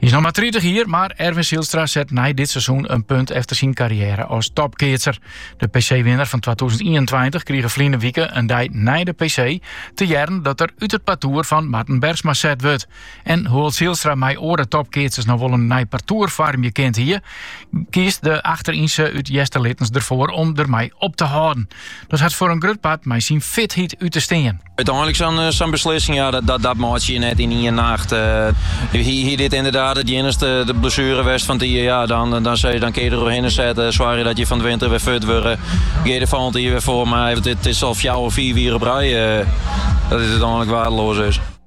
Hy is noch mar 30 jier, mar Erwin Sielstra set nei dit seizoen in punt efter syn karriêre as topkeatser. De PC-winner fan 2021 krige ferline wike in dei nei de PC te hearren dat er út it partoer fan Marten Bergsma set wurdt. En hoewol't Sielstra mei oare topkeatsers noch wol in nij partoer foarmje kind hie, kiest de achterynse út Easterlittens derfoar om dermei op te hâlden. Dat hat foar in grut part mei syn fitheid út te stean. Uteinlik sa'n beslissing, ja, dat meitsje je net yn ien nacht. Hie dit ynderdaad it iennichste blessuere west fan it jier, ja, dan sizze je dan kinne je der oerhinne setten, soargje dat je fan 't winter wer fit wurde, gean der folgjend jier wer foar. Mar it is al fjouwer, fiif jier op rij dat dit uteinlik waardeloas is.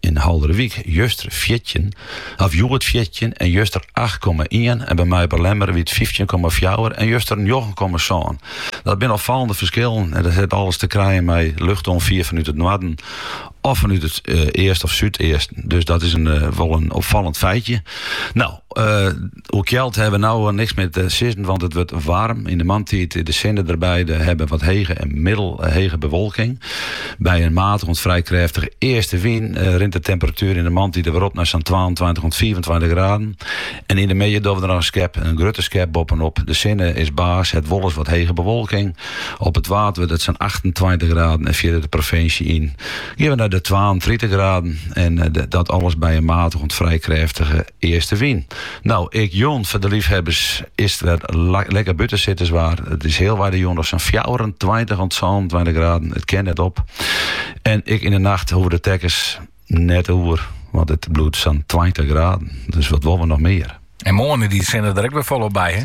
Yn Hallum wie it, juster fjirtjin of hjoed fjirtjin en juster acht komma ien en by my op 'e Lemmer wie it fyftjin komma fjouwer en juster njoggen komma sân. Dat binne opfallende ferskillen en dat hat alles te krijen mei luchtoanfier fanút it noarden of fanút it easten of súdeasten. Dus dat is wol in opfallend feitje. No, Oer kjeld hebben we nou niks meer te sizzen, want it wurdt waarm. Yn de moarntiid is de sinne derby. We hawwe wat hege en middelhege bewolking. By in matich oant frij krêftige easte wyn rint de temperatuer yn de moarntiid alwer op nei sa'n twaentweintich oant fiifentweintich graden. En yn de middei dogge we der noch in skep, in grutte skep, boppenopp. De sinne is baas, het wolris wat hege bewolking. Op it Waad wurdt it sa'n achtentweintich graden en fierder de provinsje yn gean we nei de twaentritich graden. En dat alles by in matich oant frij krêftige. Eastewyn. No, ek jûn foar de leafhawwers is it wer lekker bûtensitterswaar. It is healwei de jûn noch sa'n fjouwerentweintich oant sânentweintich graden. It kin net op. En ek yn 'e nacht hoege de tekkens net oer, want it bliuwt sa'n tweintich graden. Dus wat wolle we noch mear? En moarntiid sinne der ek wer folop by, hè?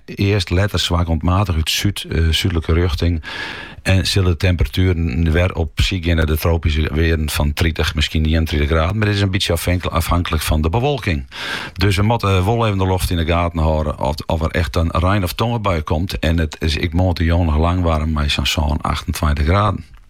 East letter swak oant maatich út súd, súdlike rjochting en sille de temperatueren wer op syk gean nei de tropyske wearden fan tritich, miskien ienentritich graden, mar dit is in bytsje ôfhanklik fan de bewolking. Dus we moatte wol even de loft yn de gaten hâlden oft der echt in rein of tongebui komt en it is ek moarntejûn noch lang waarm mei sa'n sân, achtentweintich graden.